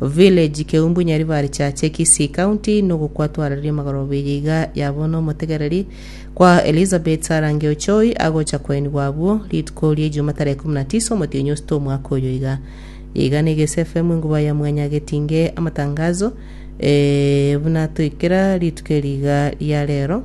Village Keumbu Nyaribari Chache Kisii County nogokwa twararie magoro obeye iga yabo nomotegereri kwa Elizabeth Sarah Ngeochoi agocha kwainigwa abwo rituko ria Ijumaa tarehe 19 omotienyi osita omwaka oyo iga iga na Igesi FM enkuba ya mwanya getinge amatangazo eh, buna toikera rituko eri iga ria rero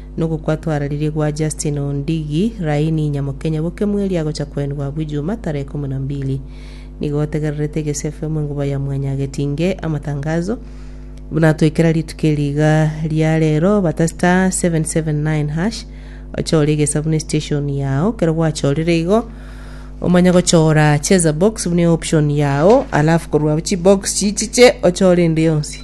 Nogokwatwararirie gwa Justin Ondigi, Raini Nyamokenya boke mweri agocha koenwa abwo Ijumaa tarehe ikomi na mbili. Nigo otegererete egesia FM Enkuba ya Mwanya agetinge amatangazo. Buna twekera rituko eri iga ria rero, bata *779#, ochore egesa buna estation yao, kero gwachorire igo, omanye gochora cheza box buna eoption yao, alafu korwa abwo chibox chichiche ochore ende yonsi.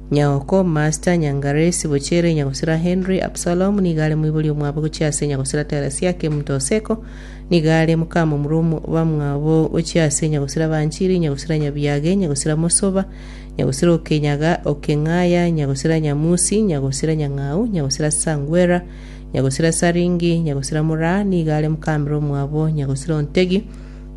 Nyaoko, Master, Nyangaresi, Bochere, Nyagosira Henry, Absalom, nigo are moibori omwabo gochia ase Nyagosira Teresiah, Kemuto Oseko, nigo are mokamomura omo bamwabo gochia ase Nyagosira Banchiri, Nyagosira Nyabiage, Nyagosira Mosoba, Nyagosira Okenyaga, Okeng'aya, Nyagosira Nyamusi, Nyagosira Nyang'au, Nyagosira Sangwera, Nyagosira Saringi, Nyagosira Moraa, nigo are mokamera omwabo Nyagosira Ontegi,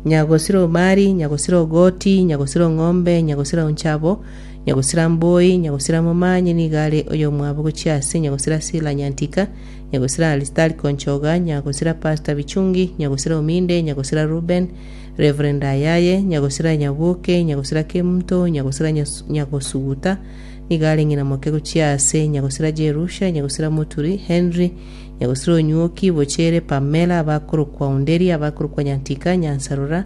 Nyagosira Omari, Nyagosira Ogoti, Nyagosira Ong'ombe, Nyagosira Onchabo, Nyagosira Mboi, Nyagosira Momanyi nigo are oyomwabo gochia ase, Nyagosira Sila Nyantika, Nyagosira Aristarko Nchoga, Nyagosira Pasta Bichungi, Nyagosira Ominde, Nyagosira Reuben, Rev. Ayaye, Nyagosira Nyabuoke, Nyagosira Kemto, Nyagosira Nyas- Nyagosuguta nigo are ng'ina moke gochia ase, Nyagosira Jerusha, Nyagosira Moturi, Henry, Nyagosira Onyuoki, Bochere, Pamela, abakorokwa Onderi, abakorokwa Nyantika, Nyansarora,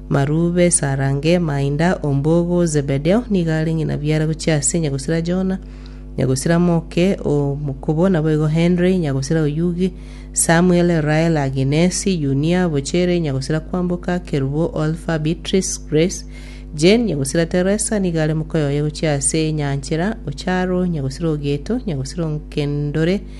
Marube, Sarange, Mainda ombogo o Zebedeo nigo are ng'ina biara gochia ase nyagosira Jona, nyagosira moke o mokubo, naboigo Henry, nyagosira oyugi, Samuel, Rael, Aginesi, Yunia, Bochere, nyagosira kwamboka, Kerubo, Olfa, Beatrice, Grace, Jane, nyagosira Teresa nigo are mokoyoye gochia ase enyanchera, Ocharo, nyagosira Ogeto, nyagosira Onkendore,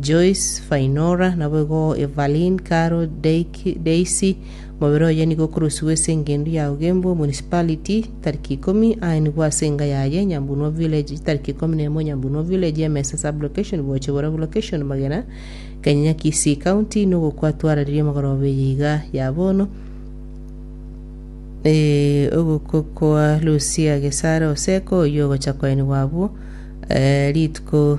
Joyce, Fainora, naboigo Evalyn, Carol, Daiky, Daisy, Mobere oye nigo okorosiwa ase engendu ya Ugembo Municipality tariki ikomi, aye nigo ase enga yaye Nyambunua Village tariki ikomi na emo Nyambunua Village, Emesa Sub-location, Boche Borabu Location, Magena, Kanyanya Kisii County, nogokwa twararirie amagoroba eye iga ya bono Eh, ogokwa kwa Lucia Gesare Oseko, oyio ogocha kwaenigwa abwo eh, rituko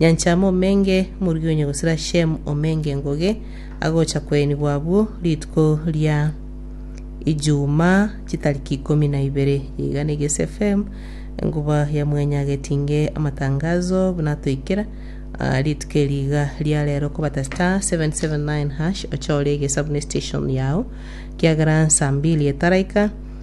Nyanchama omenge morigonye gosira Shemu omenge ngoge agocha kwenigwa abwo rituko ria Ijumaa chitariki ikomi na ibere. Iga nigo SFM enkuba ya mwenyagetinge amatangazo buna atoikera ah, rituko eri iga ria rero kobata star 779 hash ochore egesa buna estation yao kiagera nsambili etaraika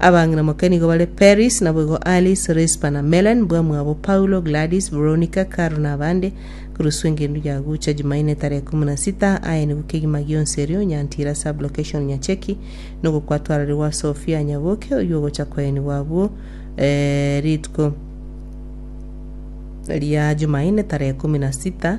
Abang'ina moke nigo bare Peris, naboigo Alice, Rispa na Melen, bwamwabo Paulo, Gladys, Veronica, Carol na abande. Korwa ase engencho ya gocha Jumaine etara ikomi na sita, aye nigo kegima gionsi erio, Nyantira Sub-location Nyacheki, nigo kwatwararigwa Sophia Nyaboke, oyio ogocha koenigwa abwo eh, rituko ria Jumaine tarehe ikomi na sita.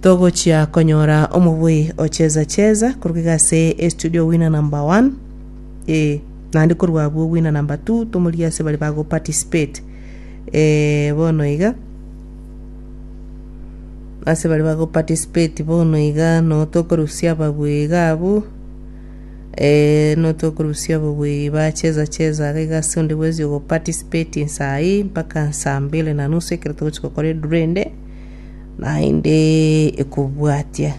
Togochia konyora omoboi ocheza cheza korwa iga ase estudio winner number one eh, naende korwa abwo winner number two tomorie ase bari bago participate eh, bono iga ase bari bago participate bono iga no tokorusia ababui iga abwo eh, no tokorusia ababui bacheza cheza iga iga ase onde bwensi ogo participating sai mpaka saa mbili na nusu ekero togochia gokora eduru ende Naende ekobwatia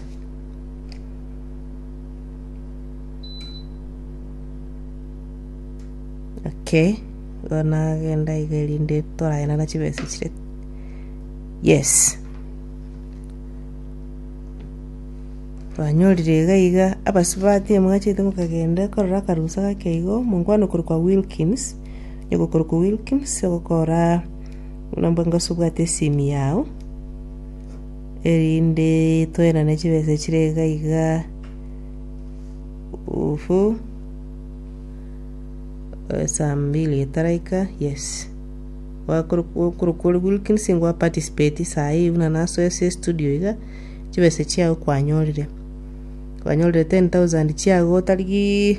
okay igo nagenda iga erinde toraenana chibesa chire yes twanyorire iga iga abasubati mwachete mokagenda korora akarusa gake igo mokwana okorokwa wilkins nigo okorokwa wilkins ogokora Nomba inga osubwate esimi yao, erinde toenane chibesa chire iga iga, ufu, eh, saa mbili etaraika, yes. Gwakoro- okorokwa ore Wilkins ngwa participate saii buna nasoa ase estudio iga, chibesa chiago kwanyorire, kwanyorire ten thousand chiago otarigiiii.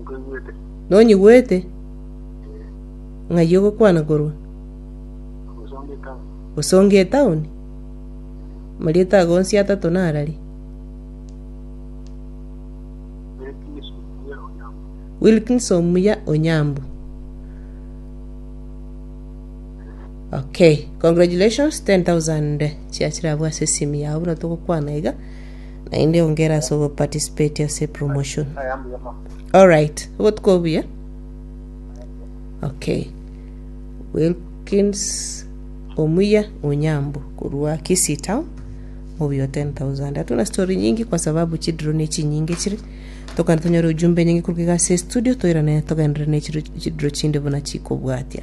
Nkoigwete. Nonyigwete? Ee. Ng'ai ogokwana korwa? Ogosonga etaoni. Gosonga etaoni? Marieta ago onsi atato narari? Wilkins Omuya Onyango. Wilkins Omuya Onyambu. Okay, congratulations 10,000 chiachira abwo ase esimi yao buna togokwana iga. naende onge ere ase ogoparticipate ase epromotion. Alright, obotuko obuya. Okay. Wilkins Omuya Onyambu korwa Kisii Town obuya 10000 atuna story nyingi kwa sababu chidro ne chinyinge chire tokana tonyore ujumbe nyingi kuruka igase studio toirane togendere ne chidro chinde buna chikobwatia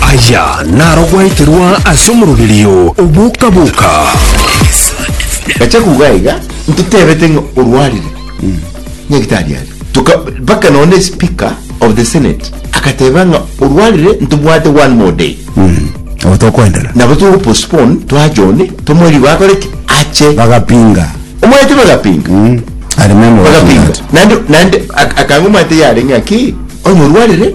Aya naro gwaeterwa ase omoroberio o boka-boka. Gacha kuga iga ntotebete ng'a orwarire nyagitari aria toka mpaka nonye speaker of the senate agateba ng'a orwarire ntobwate one more day mm. nabo tokoendera nabo togo postpone twa John tomweri bakore ki ache bagapinga omwete bagapinga mm. bagapinga nande nande akanga omwete yare ng'a ki onye orwarire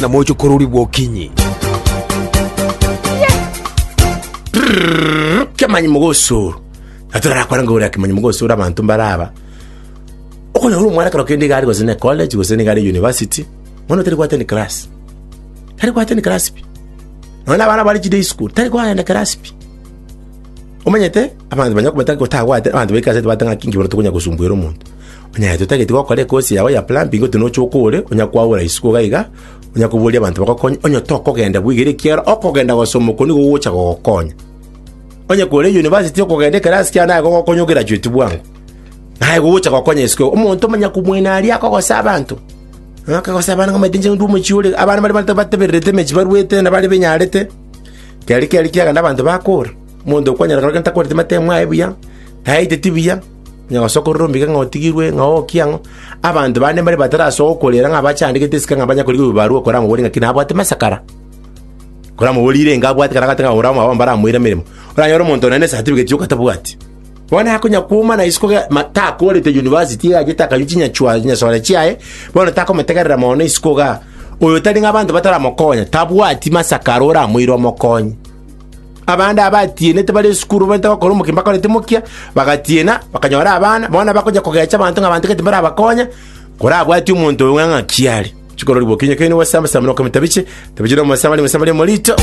na moche korori bwokinyi kemanyi mogosoro natorarakora ngora kemanyi mogosoro abanto mbaraba okonyora ore omwana kero kende igare gose ne college gose nigare university mwana otari gwateni class tari gwateni class pi nonye na abana bare chi day school tari kwagenda class pi omanyete abanto banya kobata gotagwate abanto baika asete bate ng'aki inki bono tokonya gosumbuera omonto Onye aye totageti gokora ekosi yao ya plumbing gotyo noche okore, onya kwaura isiko iga iga, onya koboria abanto bagokonye, onye tokogenda bwegere ekiagera okogenda gosoma okwo nigo gogocha gogokonya. Onye kore university okogenda ekerasi kiao naye gogokonya ograduate bwango. Naye gogocha gokonya isiko igo. Omonto omonyaku mwaino aria akogosa abanto. Ng'a akagosa abana ng'amaete inche ndue omochie ore. Abana baria bata- batebererete emechi baruete na baria benyarete. Keria keria kiagenda abanto bakora. Omonto okwanyora kero gento akwerete matemo aye buya, tayaiteti buya, Onye gosokorera omoika ng'a otigirwe, ng'a okia, ng'a abanto bande mbare batarasoa gokorera, ng'a abachandegete esike ng'a banya korigia obobaru bwa korama bore ng'aki nabwate masakara, korama bore irenge abwate kana agate ng'a ore omwabo mbare amoire emeremo, oranyore omonto one nesatifigeti yokatabwati. Bono nakonya kwoma na isiko ge- ma- takorete yunivasiti iga agete akanywa chinyachwa chinyasore chiaye, bono takomotegerera mono isiko igaa. Oyo tari ng'a abanto bataramokonya, tabwati masakara oramoire omokonye. Abande abatienete bare esukuru babaete gokora omogeni bakorete mokia, bagatiena, bakanyora abana, bono bakonya kogecha abanto ng'a abanto gati mbarabakonya, korabwati omonto oyo ng'aki are. Chikorori bokinya kaini gose amasamba noko mitabiche, tabiche nomosamba bari mosamba ria morito.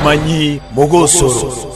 Amanyi mogosoro.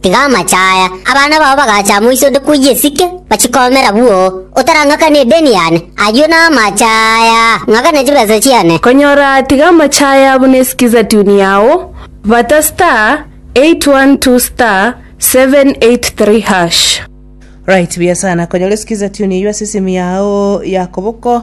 Tiga amache aya, abana bao bagacha amo iso onde koyia esike, bachikomera bwoo, otarang'akani edeni yane, ayio namache aya, ng'akana chibesa chiane. Konyora tiga amache aya buna esikiza tune yao, bata star 812 star 783 hash. Right buya sana konyora esikiza tune eyio ase esimu yao ya koboko.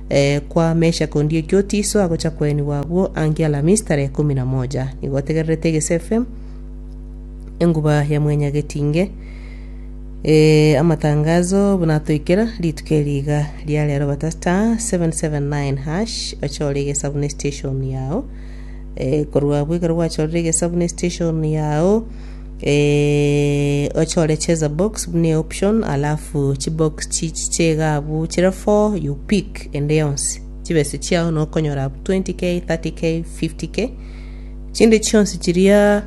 Kwa Meshake Ondioki Otiso agocha koenigwa agwo ange Alhamisi tarehe ikomi na moja. Nigo otegererete egesefe enguba ya mwenya getinge. Eh, amatangazo buna atoikera rituko eri iga ria rero bata star 779 hash ochore egesabune station yao. Eh, korwa abwo ekero gwachorire egesabune station yao Eeh ochore cheza box buna eoption alafu chibox chichi cheiga abwo chire four you pick ende yonsi chibesa chiao nokonyora abwo 20k 30k 50k chinde chionsi chiria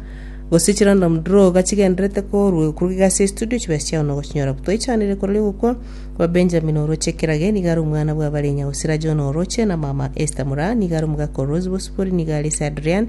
gose chirandom draw iga chigenderete korwa korwa iga ase estudio chibesa chiao nogochinyora abwo twaichanire korere gokwa kwa Benjamin oroche kirage niga are omwana bwa Barenya Osira John oroche na mama Esther Muraa niga are omogaka o Rose Bosibori niga are ase Adrian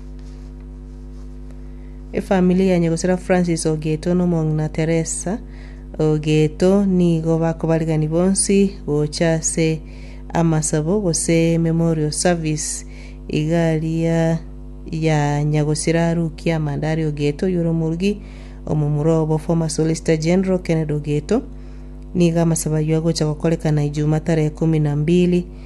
Efamili ya Nyagosera Francis Ogeto na omong'ina Teresa Ogeto nigo bakobarigani bonsi gocha ase amasabo gose memorial service igaria ya Nyagosera Ruki Amandari Ogeto oyore omorugi omomura obo former Solicitor General Kennedy Ogeto. Nigo amasabo ayio agocha gokorekana Ijumaa tarehe kumi na mbili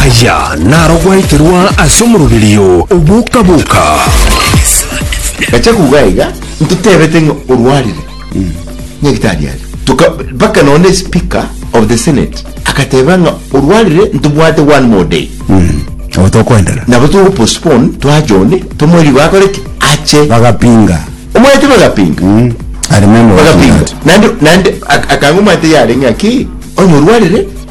Aya naro gwaeterwa ase omoroberio o boka-boka. Gacha kugae iga ntotebete ng'a orwarire nyagitari are toka mpaka none speaker of the senate akateba ng'a orwarire ntobwate one more day mm. abo tokoendera nabo togo postpone twa John tomori bakore ki ache bagapinga omwete bagapinga mm. ari memo bagapinga nande nande akanga omwete yare ng'a ki onya orwarire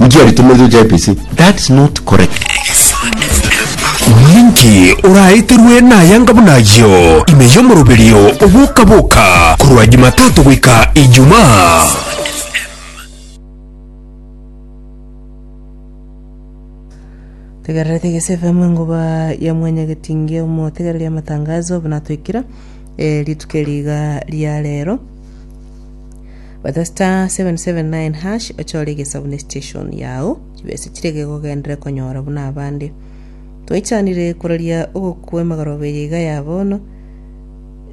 Inki aritomerete gochia Efesi? That's not correct. Ninki oraeterwe nayanga buna ayio ime y'omoroberio oboka-boka korwa Jumatatu goika Ijumaa? Tegerera Tegese FM engoba ya mwanyagetinge omotegereri amatangazo buna twekira eh, rituko riga ria rero. Bata star seven seven nine hash ochore egesabu ne station yao chibesa chiria gegogenderere konyora buna abande. Twaichanire koraria ogokwa emegoroba eye iga ya bono.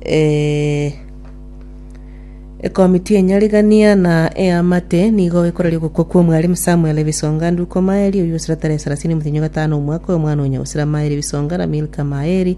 Eh, Ekomiti enyarigania na eamate nigo ekoraria ogokwa kwa omwarimu Samuel Ebisonga Nduko Maeri oyio osira tarehe sarasini motenyo gatano omwaka oyo omwana onya osira Maeri Ebisonga na Milka Maeri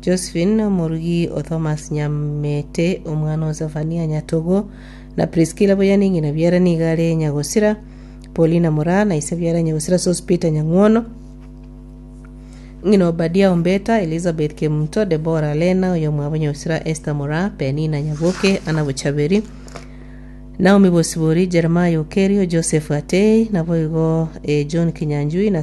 Josephine omorugi o Thomas Nyamete, omwana o Zefania Nyatogo, na Priskila boyia ne ng'ina biara nigo are nyagosira, Paulina mora na ise biara nyagosira Sospeter Nyang'wono, ng'ina Obadia Ombeta, Elizabeth Kemunto, Debora Lena oyomwabo nyagosira Esther mora, Penina Nyaboke, Anna Bochaberi, Naomi Bosibori, Jeremiah Okerio, Joseph Atei, naboigo eh, John Kinyanjui na